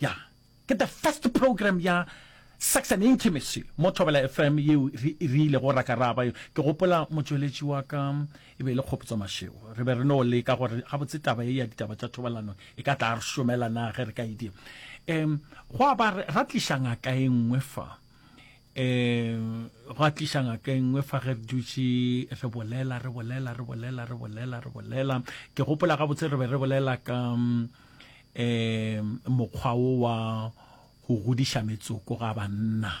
Ya, ke the first program ya Sex and Intimacy mo Thobela FM yeo re, re ilego ra ka ra ba yo. Ke gopola motšweletši wa ka e be e le Kgopotso Mashego. Re be re no leka gore gabotse taba ye ya ditaba tša thobalano e ka tla re šomela na ge re ka e dira. Um, go a ba ra tliša ngaka e nngwe fa. Um, go a tliša ngaka e nngwe fa ge re dutše re bolela, re bolela, re bolela, re bolela, re bolela. Ke gopola gabotse re be re bolela ka... Um, um mokgwa wo wa go godiša metsoko ga banna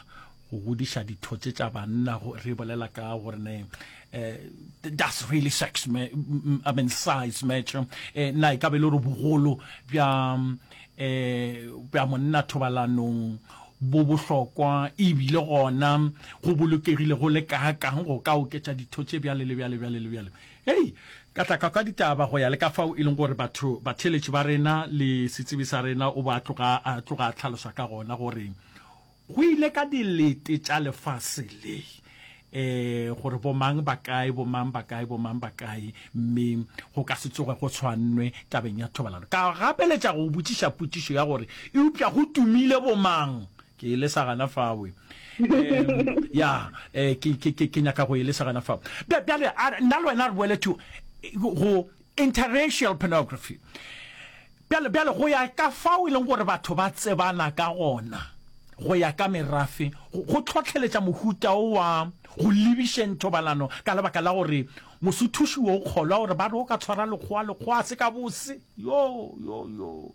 go godiša dithotse tša banna re bolela ka gore ne um does really sex me, I mean size match um na e ka be le gore bogolo bja um bja monna thobalanong bo bohlokwa ebile gona go bolokegile go le kaakang go ka oketša dithotse bjale le bjale bjale le bjale Hei! Ka tla ka kwa ditaba go ya le ka fao e leng gore batho, batheeletši ba rena le setsebi sa rena o bo a tloga a tloga a tlhalosa ka gona gore go ile ka dilete tša lefase le, e, gore bomang ba kae, bomang ba kae, bomang ba kae, mme go ka se tsoge go tshwannwe tabeng ya thobalano. Ka gapeletša go botšiša potšišo ya gore, Eupša go tumile bomang Ke e lesa gana fao. Em, ya, eh, ke, ke, ke, ke nyaka go e lesa gana fao. Bja- Bjale, a re- nna le wena re boele to eh, go interracial pornography. Bjale, bjale go ya ka fao e leng gore batho ba tsebana ka gona, go ya ka merafe, go go tlhotlheletša mohuta o wa go lebišeng thobalano ka lebaka la gore mosuthuši o kgolwa gore ba re o ka tshwara lekgowa, lekgowa a se ka bose. Yo, yo, yo.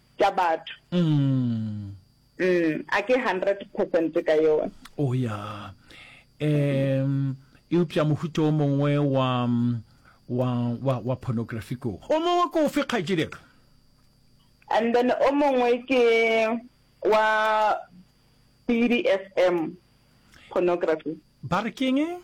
tša batho. Umm a ke hundred percent ka yona. Oh ya um eupša mohuta o mongwe wa wa wa wa pornography ko o mongwe ko ofe kgaetšedeka and then o mongwe ke wa BDSM pornography ba re keng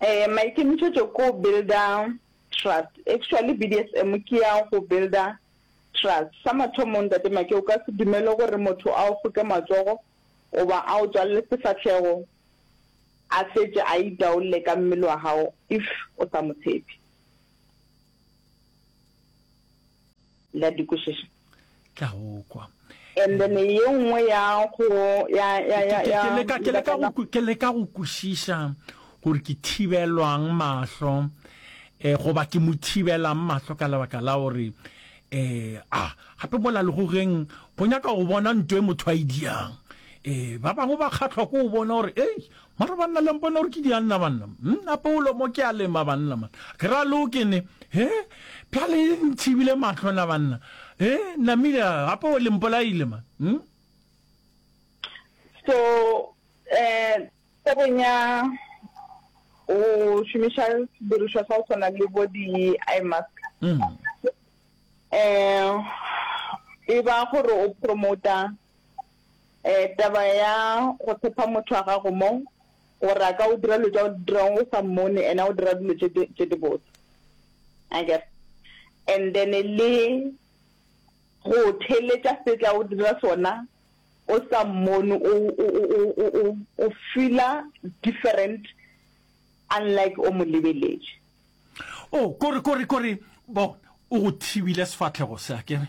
eh maikemišetšo ko builder trust actually BDSM ke ya go builder trust sa mathomo ntate Make o ka se dumele gore motho a o foke matsogo goba a o tswalele sefahlego a fetše a itaolle ka mmele wa gago if o sa mo tshepe. la dikwešiša tla okwa and then ye nngwe ya go ya ya ya ya ke leka ke leka go ke leka go kwešiša gore ke thibelwang mahlo eh goba ke mo thibelang mahlo ka lebaka la gore eh a gape mola le go geng go nyaka go bona ntwe motho a idiang e eh, ba bangwe ba kgatlhwa ko o bona gore ei Mara banna le mpone gore ke dianna banna mmm a Paulo mo ke a lema banna man ke ra lo ke ne he pjale e ntshibile mahlo na banna he namile gape o le mpolaile man mmm So eh tabeng ya go šomiša sedirišwa sa go tshwana le bo di eye mask eh e ba gore o promota um taba ya go tshepa motho wa gago mo gore a ka o dira dilo tsa o dirang o sa mmone and a o dira dilo tse di botse akere and then le go theletša se tla o dira sona o sa mmone o feela different unlike o mo lebeletše o oh, kore kore kore bona o go thibile sefatlhego se a kere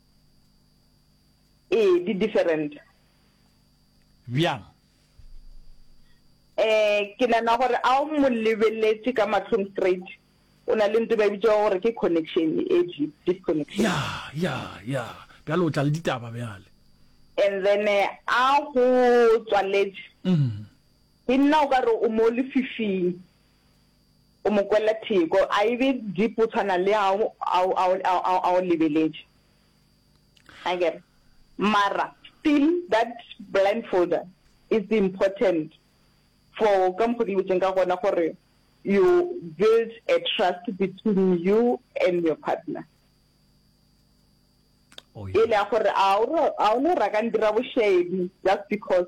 Ee, di different. Bjang? Eh, ke nana gore a o mo lebeletše ka matlhong straight. O na le nto ba e bitša gore ke connection e deep, deep connection. Ya, ya, ya. Bjale o tla le ditaba bjale. And then eh, a go tswaletše. Mm. Ke nna o ka re o mo lefifing. O mo kwella theko. A e be deep go tshwana le ha a o lebeletše. Akere? Mara still that blindfolder is important for ka mokgo ke lebetšeng ka gona gore you build a trust between you and your partner. Yela ya gore a o no raka ndira bošaedi just because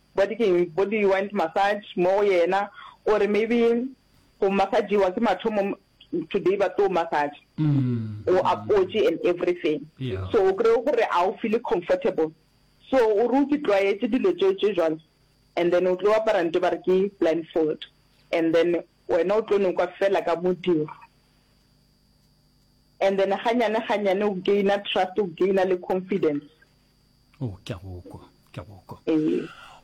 Bo di keng bo di wind massage mo go yena or maybe go massagiwa ke mathomo today ba tlo massage o apotše and everything so o kry gore a o feel comfortable so o re o ke tlwaetse dilo tšeo tše jwalo and then o tlo apara nto ba re ke blindfold and then wena o tlo nokwa fela ka modiro and then ganyane ganyane o gaina trust o gaina le confidence. o oh, ke a go kwa ke a go kwa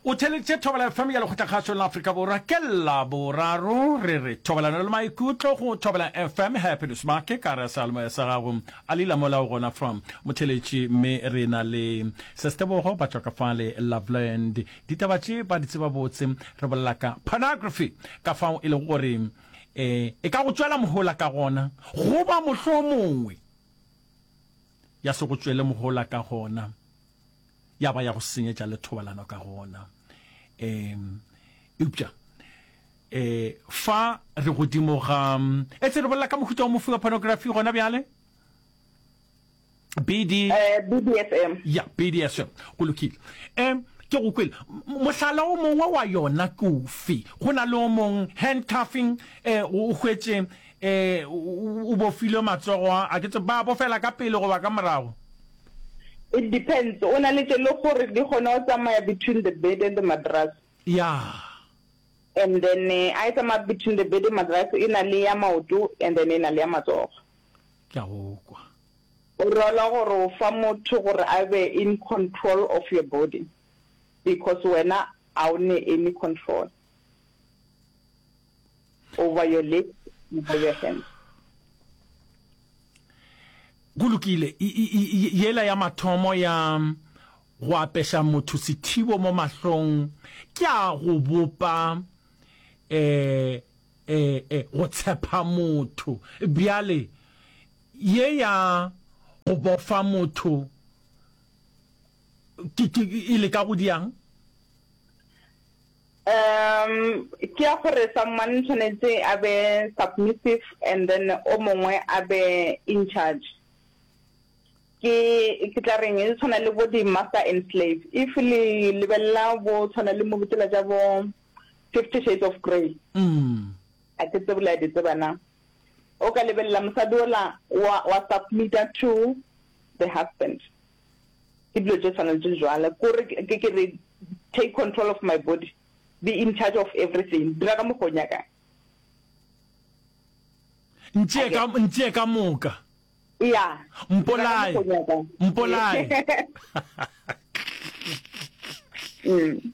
o theleditše thobela fm ya lekgotlakgašong la aforika borwa ke la boraro re re thobalano le maikutlo go thobela fm happiness make ka re sealemoya sa gago a le ilamola o gona from motheletši mme re na le sestebogo ba tswa ka fale loveland ditaba tše ba di tseba botse re bolela ka pornography ka fao e lego gore um e ka go tswela mohola ka gona goba mohlomongwe ya se go tšwele mohola ka gona, ya ba ya go senyetša le thobalano ka gona. Um eupša um fa re godimo ga etse re bolela ka mohuta o mofe wa pornography gona bjale BD uh, eh, BDSM ya BDSM go lokile um ke go kwele mohlala o mongwe wa yona ke ofe go na le o mongwe handcuffing um o hwetse Ee, o bofilwe matsogo. A ke tse ba bofela ka pele goba ka morago? It depends, o na le tše le gore di kgona go tsamaya between the bed and the mattress. Yeah. And then a e tsamaya between the bed and mattress, e na le ya maoto and then e na le ya matsogo. Ke a go kwa. O rola gore o fa motho gore a be in control of your body because wena a o ne any control. over your lips over your hands go lokile yela ya mathomo ya go apesha motho sethibo mo mahlong ke a go bopa eh eh eh go tshepa motho bjale ye ya go bofa motho ke ke ile ka go diang Um, ke ya gore someone tshwanetse a be submissive and then o mongwe a be in charge. Ke ke tla reng e tshwana le bo di master and slave. If le lebella bo tshwana le mo botela ja bo 50 shades of grey. Mm. A ke tse bula di tseba na. O ka lebella mosadi ola wa wa submit to the husband. ke dilo tše tshwana le tše jwala kore ke ke re take control of my body be in charge of everything dira ka mokgo nyakang ntšee ka ntšee ka moka ya mpolae mpolae mm.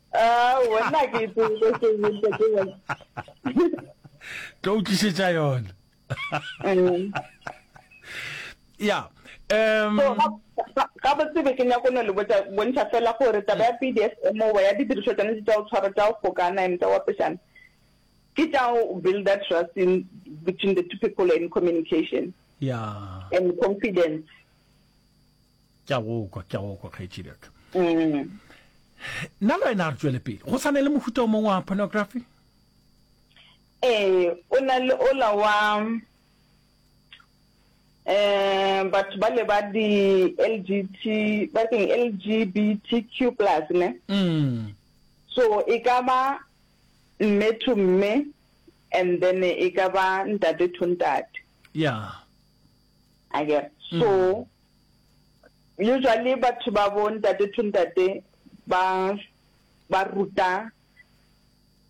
Ah, wena ke tsebe se ntle ke wena. Tlo utlisetsa yona. Mm. Yeah. Um, so ga bo tsebe ke nyako no le botsa bontsha fela gore taba ya PDSM o ya didiriswa tsone tsa o tshwara tsa o fokana ene tsa wa peshana ke tsa o build that trust in between the two people in communication yeah and confidence ke a go kwa ke a go kwa kgaetšedi aka mm. nna le wena a re tswele pele go sa ne le mohuta o mongwe wa pornography ee o na le ola wa um batho ba le ba di-lgt ba keng lgbtq plus ne mm. so e ka ba mme to mme and then e ka ba ntate to ntate yeah a ke so usually batho ba bo ntate to ntate ba ba ruta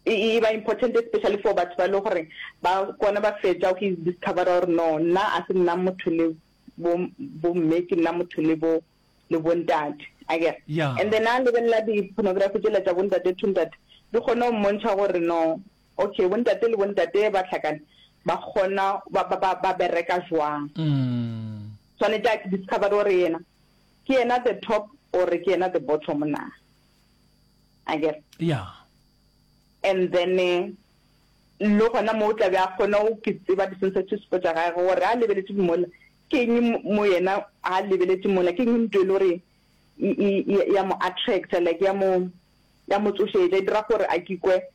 e, e ba important especially for batho ba le gore ba kone ba fetsa go discover gore no nna a se nna motho le bo bo mme ke nna motho le bo le bo ntate a ke and then a lebelela di pornography tsela tsa bo ntate to ntate di kgone go mmontsha gore no Ok, bontate le bontate ba hlakane ba kgona ba ba ba ba bereka jwang? Swanetše a discover gore yena ke yena the top or ke yena the bottom na? I guess. Yeah. And then eh, le gona mo o tla be a kgona o ke tseba di-sensitive spot tša gage gore a lebeletse mola ke eng mo- mo yena a lebeletse mola ke eng nto e le gore e- e- e- ya mo attracta like ya mo ya mo tsošetša e dira gore a kikwe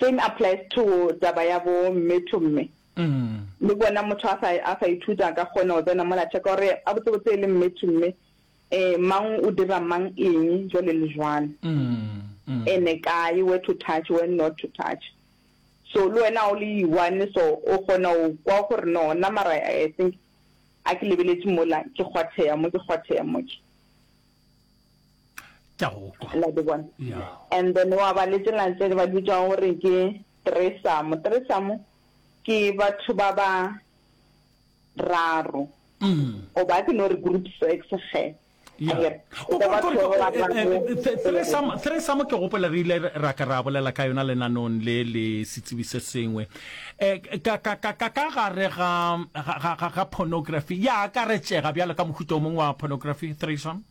Same applies to taba ya bo mme to mme. Le bona motho a sa a sa ithuta a ka kgona go tsena mola check gore a botse botse e le mme to mme eh mang o dira mang eng jwale le jwalo. Ene kae where to touch where not to touch. So le wena o le one so o kgona go kwa gore no nna mara I think a ke lebeletse mola ke kgwatheya mo ke kgwatheya mo ke. ke go kwa la ke bona and then wa ba le tsela tse ba bitsa gore ke tresamo tresamo ke batho ba ba raro o ba ke no re group sex ge thresamo ke gopola re ile ra ka ra bolela ka yona lenanong le le setsebi se sengwe um ka gare ga pornography ya akaretšega bjalo ka mohuta o mongwe wa pornography thresome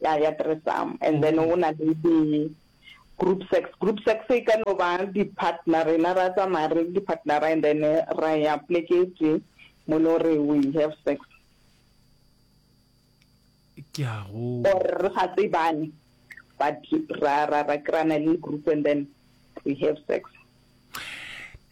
ya ya threesome and then o na le di group sex group sex e ka no ba di partner rena ra tsamaya re di partner and then ra ya pleke tse mo le gore we have sex ke a go or re sa tsebane but ra ra ra krana le group and then we have sex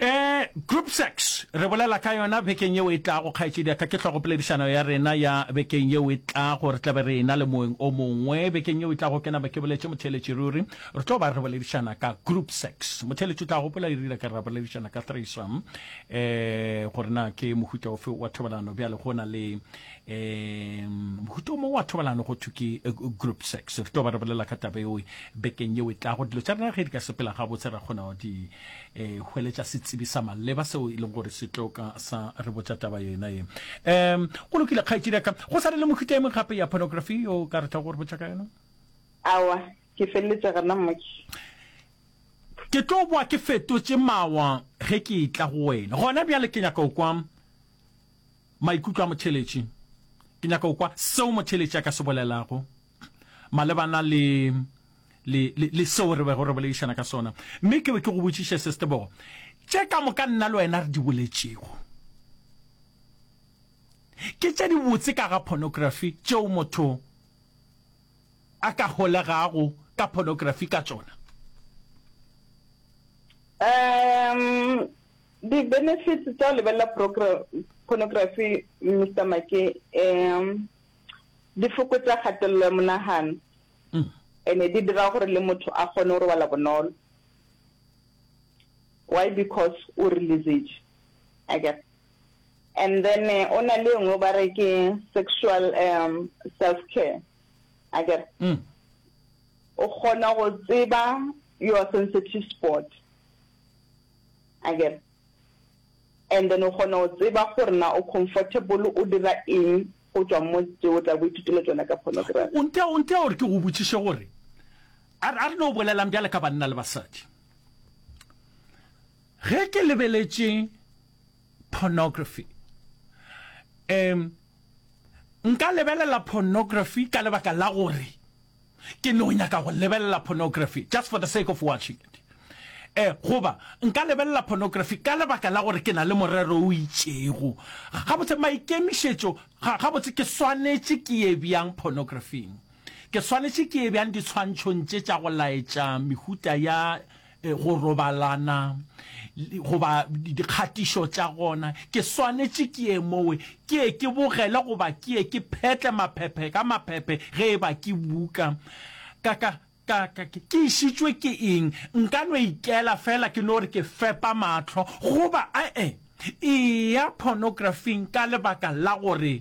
Eh, group sex re bolela ka yona bekeng yeo e tlago kgaetšedi ya ka ke hlogopoledišano ya rena ya bekeng yeo e tlago re tlabe re ena le moeng o mongwe bekeng yeo e tlago ke naba ke boletše motheeletši ruri re tlo ba re boledišana ka group sex motheeletši o tla gopola e rile ka re boledišana ka threesome eh gore na ke mohuta ofe wa thobalano bjale go na le Um mohuta o mongwe wa thobalano go thwe ke eh, group sex re tlo ba re bolela ka taba eo bekeng yeo e tlago dilo tša rena ge di ka sepela gabotse ra kgona di um hweletša setsebi sa maleba seo e leng gore se tlo ka sa re botša taba yona e um go lokile kgaetšedi ka go sa le le mohuta e mong gape ya pornography yo ka re tla go re botša ka yona awa ke feleletše gana mmoki ke tlo boa ke fetotše mawa ge ke e tla go wena gona bjale ke nyaka o kwang Maikutlo a motheeletši. Ke nyaka go kwa seo motheeletši a ka se bolelago malebana le, le, le, le seo re bego re boledišana ka sona. Mme ke be ke go botšiše se, Setebogo, tše ka moka nna le wena re di boletšego ke tše dibotse ka ga pornography, tšeo motho a ka holegago ka pornography ka tšona. Umm, Di benefits tsa go lebelela pornography Mister Ma ke um di fokotsa kgatelelo ya monagano mm. ene di dira gore le motho a kgone go robala bonolo why because o releasage i guess and then eh, o na le nngwe ba re ke sexual um self care i guess mm. o kgona go tseba your sensitive sport Akere? And then o kgona go tseba gore na o comfortable o dira eng go tšwa mo tše o tla bo ithutile tšona ka pornography. O ntea, o ntea gore ke go botšiše gore a re, a re no bolelang bjale ka banna le basadi. Ge ke lebeletše pornography, um nka lebelela pornography ka lebaka la gore, Ke no nyaka go lebelela pornography just for the sake of watching it. Eh, goba nka lebelela pornography ka lebaka la gore ke na le morero o itšego. Gabotse, maikemišetšo, ga, gabotse ke swanetše ke ye bjang pornografing? Ke swanetše ke ye bjang ditshwantšhong tše tša go laetša mehuta ya go robalana goba dikgatišo tša gona, ke swanetše ke ye mowe, ke ye ke bogele goba ke ye ke phetle maphephe ka maphephe ge e ba ke buka. Ka, ka, ka, ka, ke išitšwe ke eng? Nka no ikela feela ke no re ke fepa mahlo, goba, a-e, eya pornografing ka lebaka la gore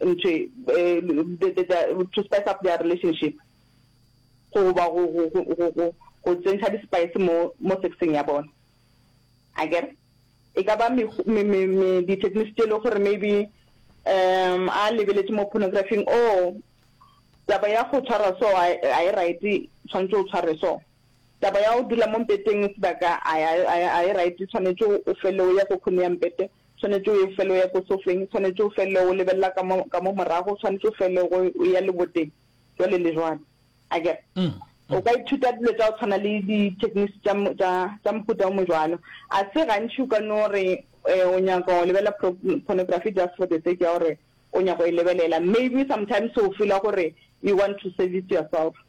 ntšhe eh, to spice up their relationship goba go tsentšha di-spice mo mo sexeng ya bona a kere e ka ba di-techniques tse e le gore maybe um a lebeletse mo pornographing o oh, taba ya go tshwara so a e right tshwanetse o tshware so taba ya go dula mo mpeteng sebaka a e right tshwanetse o fele o ya go khone ya mpete Tshwanetše o ye fela o ya ko sofeng, tshwanetše o felele o lebelela ka mo, ka mo morago, tshwanetše o felele go o ya leboteng, jwale le jwale. A ke re? O ka ithuta dilo tša go tshwana le di-techniques tša, tša, tša mohuta o mo jwalo. A se gantši o ka no re um o nyaka go lebelela pro, pornography just for the sake ya gore o nyaka go e lebelela. Maybe sometimes o feeler gore you want to service yourself.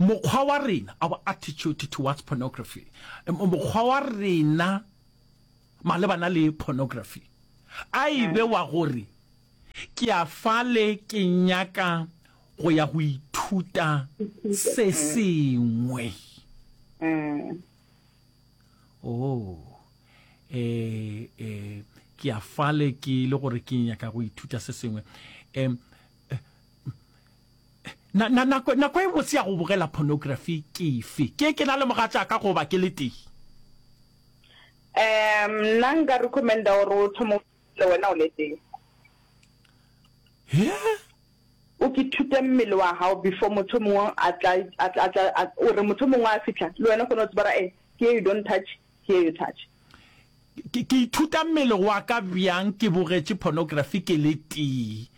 Mokgwa wa rena, our attitude towards pornography, mokgwa wa rena malebana le pornography, a e be wa gore ke a fale ke nyaka go ya go ithuta se sengwe. Oh, eh, eh, ke a fale ke le gore ke nyaka go ithuta se sengwe. Eh, Na, na, nako, nako e botse ya go bogela pornography ke efe? Ke, ke na le mogatšaka goba ke le tee? Um, nna nka recommenda gore o thomo le wena o le tee. He? O ke thute mmele wa hao before motho mongwe a tla, a tla, a tla, o re motho mongwe a fitla, le wena kgone o tsebara, eh, ke you don't touch, Here you touch. Ke, ke ithuta mmele wa ka bjang ke bogetše pornography ke le tee?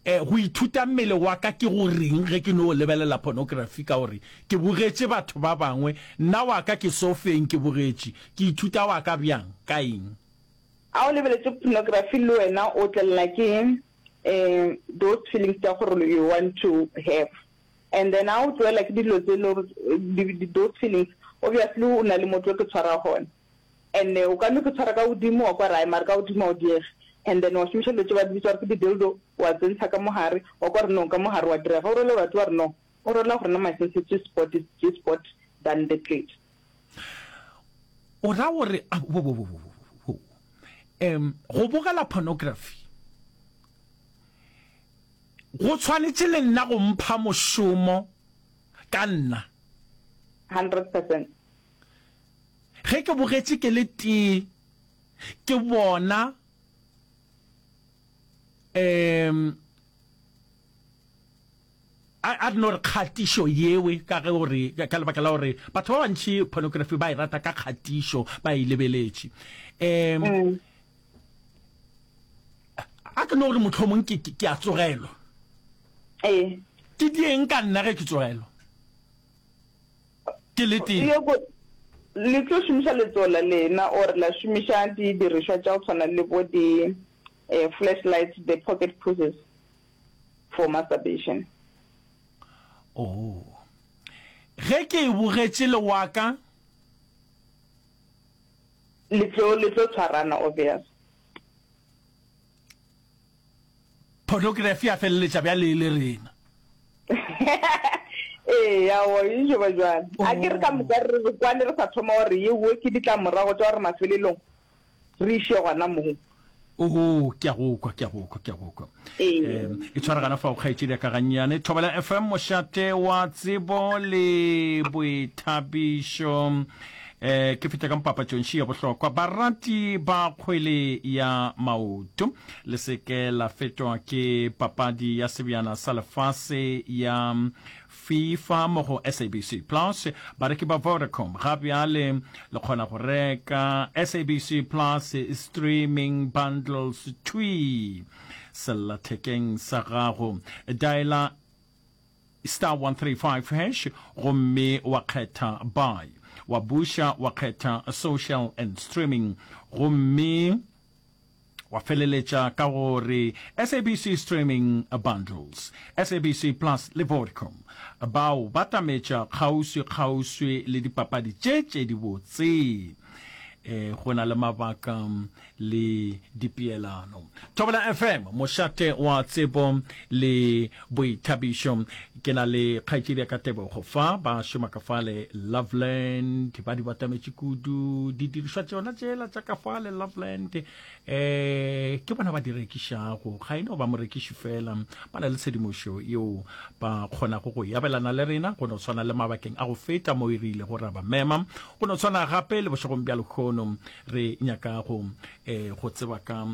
Eh, go ithuta mmele wa ka ke go reng ge ke no lebelela pornography ka gore ke bogetše batho ba bangwe, nna wa ka ke sofeng ke bogetše, ke ithuta wa ka bjang, ka eng? A o lebeletše pornography le wena o tlelelwa ke, eh, those feelings tša gore you want to have? And then a o tloela ke dilo tse le gore those feelings obviously o na le motho o ke tshwara gone and o ka no ke tshwara ka godimo wa kwa rae mare ka godimo a o diege and then wa šomiša dilo tse ba di bitsa gore ke di-dildo wa tsentsha ka mogare wa kwa re no ka mogare wa direga o role gore batho ba re no o rola gore na my sensitive spot is G spot than the clit o ra gore um go bogela pornography Go tshwanetše le nna go mpha mošomo ka nna. Hundred percent. Ge ke bogetše ke le tee ke bona um a a no re kgatišo yewe ka ge o re ka lebaka la gore batho ba bantši pornography ba e rata ka kgatišo ba e lebeletše um a ke no gore motlhomong ke ke a tsogelwa eh ke dieng ka nna ge ke tsogelwa ke le teng le tlo šomiša letsogo la lena or la šomiša didirišwa tša go tshwana le bo di eh, flashlights the pocket pushes for masturbation oh ge ke e bogetše le waka Le tlo, le tlo tshwarana, obvious. Pornography ya feleletša bjale e le rena. Ee, ya o, e jo ba jwale. Oh. A ke re ka moka re re kwane re sa thoma gore ye wo ke ditlamorago tša gore mafelelong re iše gona moo. oo ke a go kwa ke a go kwa ke a go kwa um e tshwaragana fa o kgaetšedi ka gannyane thobela fm mošate wa tsebo le boithabišo um ke feta ka mpapatšongši ya bohlokwa barati ba kgwele ya maoto le seke la fetwa ke papadi ya sebjana sa lefase ya Fifa mo go SABC Plus bareki ba Vodacom ga bjale le kgona go reka SABC Plus Streaming Bundles thwii sellathekeng sa gago. Dialer star 135 hash gomme wa kgetha buy wa buša wa kgetha social and streaming gomme Wa feleletša ka go re SABC Streaming Bundles, SABC Plus le Vodcom bao batametša kgauswi-kgauswi le dipapadi tše tše dibotse e go na le mabaka le dipeelano. Thobela FM, mošate wa tsebo le Boithabišo, Ke na le kgaetšedi ya ka Tebogo fa, ba šoma ka fale Loveland, ba di batametše kudu didirišwa tšona tšela tša ka fale Loveland. Eh, ke bona ba di rekišago, ga e no ba morekiši fela, ba na le tshedimošo yeo ba kgonago go yabelana le rena, go no tshwana le mabakeng a go feta mo e re ilego ra ba mema, go no tshwana gape le bošegong bja lekgono re nyaka go, eh, go tseba ka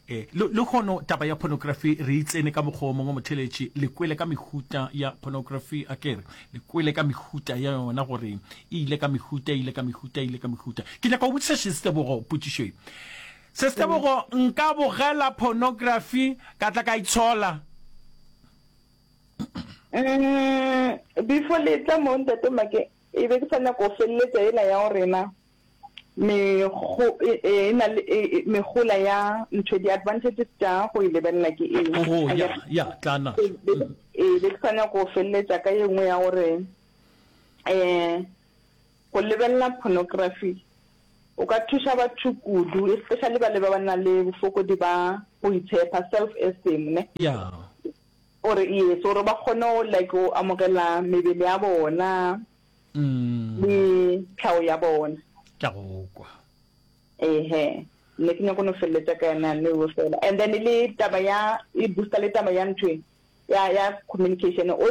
E, le, lehono taba ya pornography re e tsene ka mokgwa o mongwe motheletši, le kwele ka mehuta ya pornography a kere, le kwele ka mehuta ya yona gore e ile ka mehuta, e ile ka mehuta, e ile ka mehuta. Ke nyaka go botšiša Šestebogo potšišo e. Šestebogo, nka bogela pornography ka tla ka itshola? Mm, before le tla mo ntate Make, e be ke sa nyaka go feleletša ena ya go rena. Mego, e, e, e na le e, e, megola ya ntho, di-advantages tša go e lebelela ke eng? Go, I ya, guess. ya, tla na. Be- be- Mm. ee, be ke sa nyako go feleletša ka ye nngwe ya gore um go lebelela pornography o ka thuša batho kudu especially ba le ba ba na le bofokodi ba go itshepa self esteem ne Ya, gore yes gore ba kgone go like go amogela mebele ya bona le tlhago ya bona ke a go kwa ehe nne ke nyako no feleletša ka yona ne o fela and then le taba ya e booster le taba ya ntwe ya ya communication o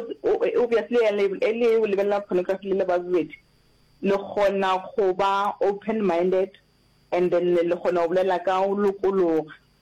obviously e le o lebelela pornography le le babedi le gona go ba open minded and then le gona go bolela ka o lokologa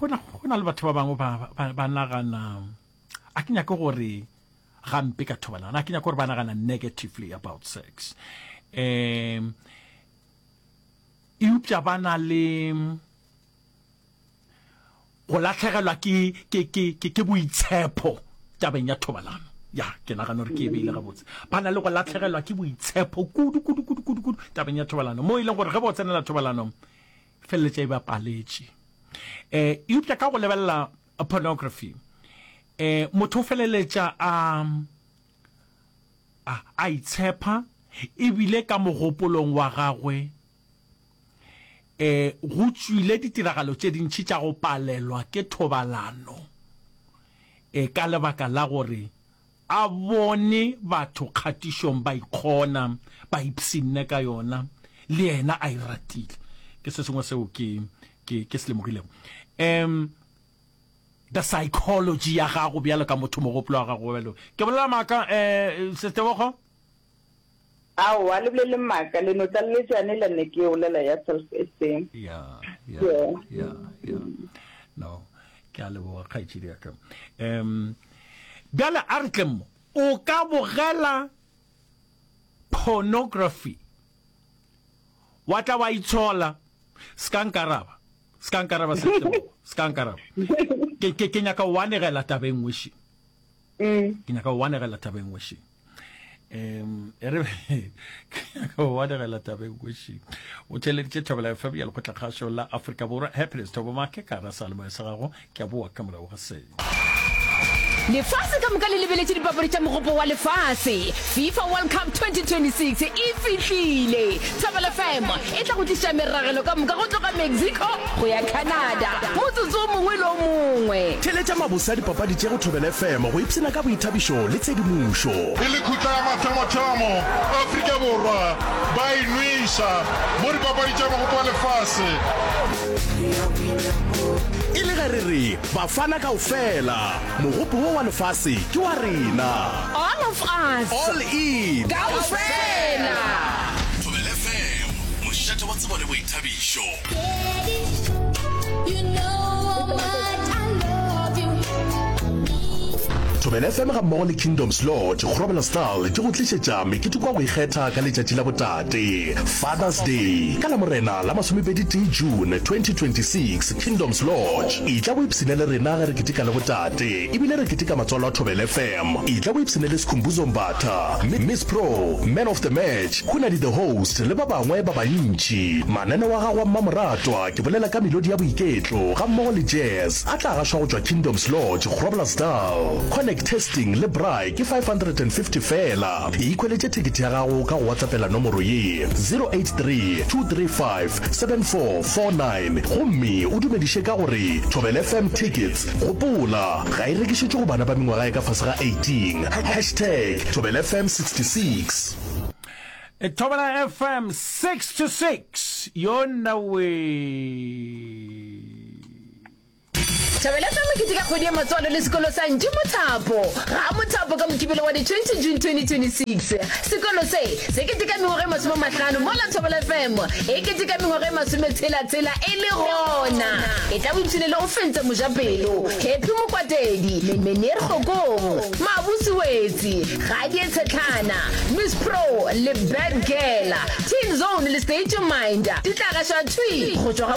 go na le batho ba bangwe ba nagana a ke nyake gore gampe ka thobalana a ke nyake gore ba nagana negatively about sex um eupša ba na le go latlhegelwa ke boitshepho tabeng ya thobalano ya ke nagana gore ke e beile gabotse ba na le go latlhegelwa ke boitshepho kudu kudu kudu kudu kudu tabeng ya thobalano mo e leng gore ge ba o tsenela thobalano feleletša e ba paletše eh eupša ka go lebelela pornography eh motho o feleletša a a itshepa ebile ka mogopolong wa gagwe eh go tswile ditiragalo tše dintši tša go palelwa ke thobalano eh ka lebaka la gore A bone batho kgatišong ba ikgona, ba ipshinne ka yona, le yena a e ratile. Ke se sengwe seo ke, ke, ke se lemogilego. Um, the psychology ya gago bjalo ka motho, mogopolo wa gago bjalo. Ke bolela maaka, eh, Ses'Tebogo? Aowa, le bolele maaka, le no tlaleletša yane le ne ke e bolela ya self esteem. Ya, ya, ya, ya. No, ke a leboga kgaetšedi ya ka. Um, bjale a re tle mo, o ka bogela pornography wa tla wa itshola ska nkaraba ska nkaraba se ke ke nyaka wa negela tabeng wishi Mm. ke nyaka go wanegela tabeng wešeng um e re ke nyaka go wanegela tabeng wešeng o theleditše thobela fm ya lekgotlakgašo la afrika borwa happiness thobo make ka ra salemoya sa gago ke a boa ka morago ga seo lefase ka moka le lebeletše dipapadi tša mogopo wa lefase Fifa World Cup 2026 e fihlile! Thobela FM e tla go tliša meragelo ka moka go tloga Mexico go ya Canada motsotso o mongwe le o mongwe. Theletša mabose a dipapadi tše go Thobela FM go ipshina ka boithabišo le tshedimošo. E le khutla ya mathomothomo Afrika Borwa ba e nweša mo dipapadi tša Mogopo wa Lefase. E le ge re re Bafana kaofela! Mogopo wo wa lefase ke wa rena. All of us. All in. Kaofela. Thobela FM, mošate wa tsebo le boithabišo. Get it. You know how much I love you. Thobela FM gammogo le Kingdoms Lodge Groblersdal di go tlišetša meketeko wa go ikgetha ka letšatši la botate, Father's Day, ka Lamorena la masomepedi-tee June 2026. Kingdoms Lodge. Etla o ipshine le rena ge re ketika le botate ebile re ketika matswalo a Thobela FM. Etla o ipshine le Skhumbuzo Mbatha, Miss Pro, Man of the Match, Khunadi the Host le ba bangwe ba bantši. Mananeo a gago a mmamoratwa, ke bolela ka melodi ya boiketlo gammogo le jazz, a tla gašwa go tšwa Kingdoms Lodge, Groblersdal. Connect testing le braai ke 550 feela. Ikhweletše thekete ya gago ka go WhatsAppela nomoro ye, 083 235 7449 gomme o dumediše ka go re Thobela FM Tickets. Gopola, ga e rekišetšwe go bana ba mengwaga e ka fase ga 18. Hashtag Thobela FM 66. Thobela FM 66 yona we. Thabeletša mokete ka kgwedi ya matswalo le sekolo sa Ntši Mothapo ga a Mothapo ka Mokibelo wa di 20 June 2026. Sekolo se se keteka mengwaga e masome a mahlano mola Thobela FM e keteka mengwaga e masome tshela tshela e le gona e tla bo ipshine le go fentsa mojapelo Happy Mokwatedi, Meneer Kgokong, Mabusi Wetsi, Gadie Tshetlhana, Miss Pro le Bad Girl, Teen Zone le State Your Mind di tla gaša thwi go tšwa ga